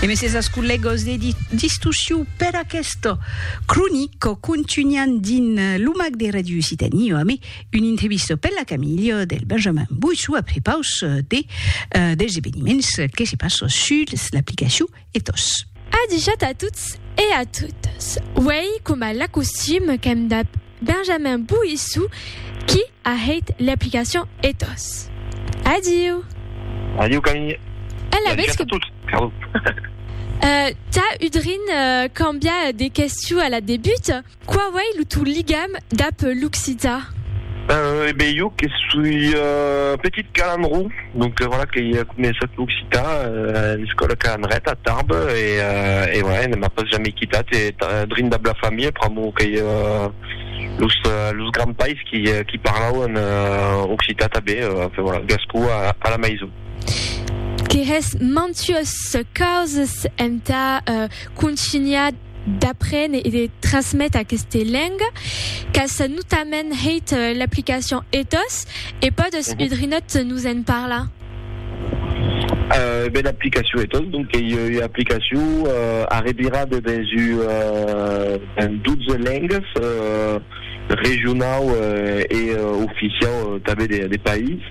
E me ses as collegos de distusiu per aquesta cronica contunhan din lo mac de Radio Occitanie ame un entrevista per la camilha del Benjamin Boissou a prepaus de dels eveniments que se passa suls l'aplicaciu Ethos. Adijat a tots e a totas. Uèi coma l'acostum qu'èm dab. Benjamin Bouissou qui a hèit l'aplicacion Ethos. Adiu! Adiu Camille! E la vez que. Euh, tà udrin cambiar de questiu a la debut, quau ei lo tau ligam dab l'occitan? Euh, e ben, jo que soi petit calandró, Mon peròla que i a començat l'occitan a l'escòla Ca Anret a Tarbes e voilà, ne m'a pas jamei quitat e drin dab la familha pr'amor qu'ei los granpais qui parlauen occitan tanben, enfin voilà, gascon a la maison. Que hè's mantues causas entà contunhar d'aprene e de trasmete aqueste lenga qu'as notament hèit l'aplicacion ethos e pòdes udrinòt nos en parlar? Ben l'aplicacion ethos donc qu'ei ua aplicacion arrevirada dens un 12 lengas regionau e oficiau tanben de país.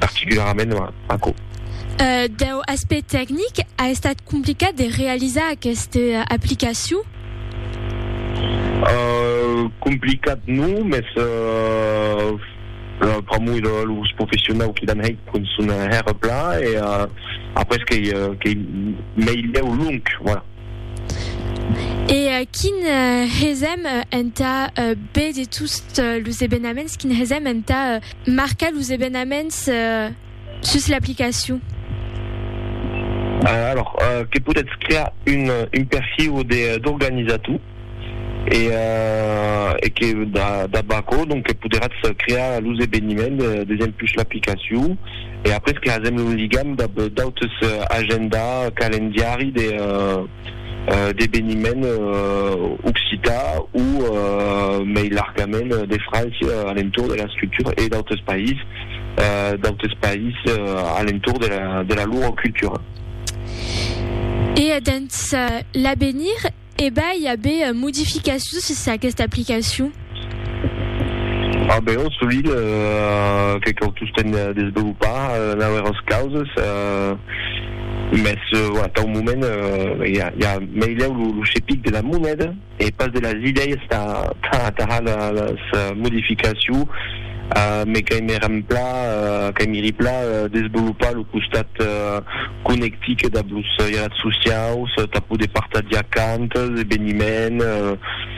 particularament aquò. Deu aspect tecnic, a estat complicat de realizar aquesta aplicacion? Complicat non, mès pr'amor de los professionau qui l'an hèit pon son hèr plan e après qu'ei meilhèu long, voilà. E quin hesèm entà be de tots los ebenaments, quin hesèm entà. Marcar los evenaments sus l'aplicacion. Alors, que podètz crear un un perfil de d'organizator e e que dab aquò donc que poderatz crear los eveniments des empus l'aplicacion e après creasèm un ligam dab d'autes agenda, calendiari de d'eveniment occitan o mei largament de França a l'entorn de la scriptura e d'autres país, d'autres país a l'entorn de la lor cultura. E dens l'avenir, e vai aver modificacions sus aquesta aplicacion? A Beòrn sovint que cau tostemp desvelopar nauèras causes, mès atau moment i a meilèu lo chepic de la moneda e pas de las idèias tà atajar las modificaciu, me qu'aimiri pla desvelopar lo costat conectic dab los jalat sociaus tà poder partajar cantas, eveniments.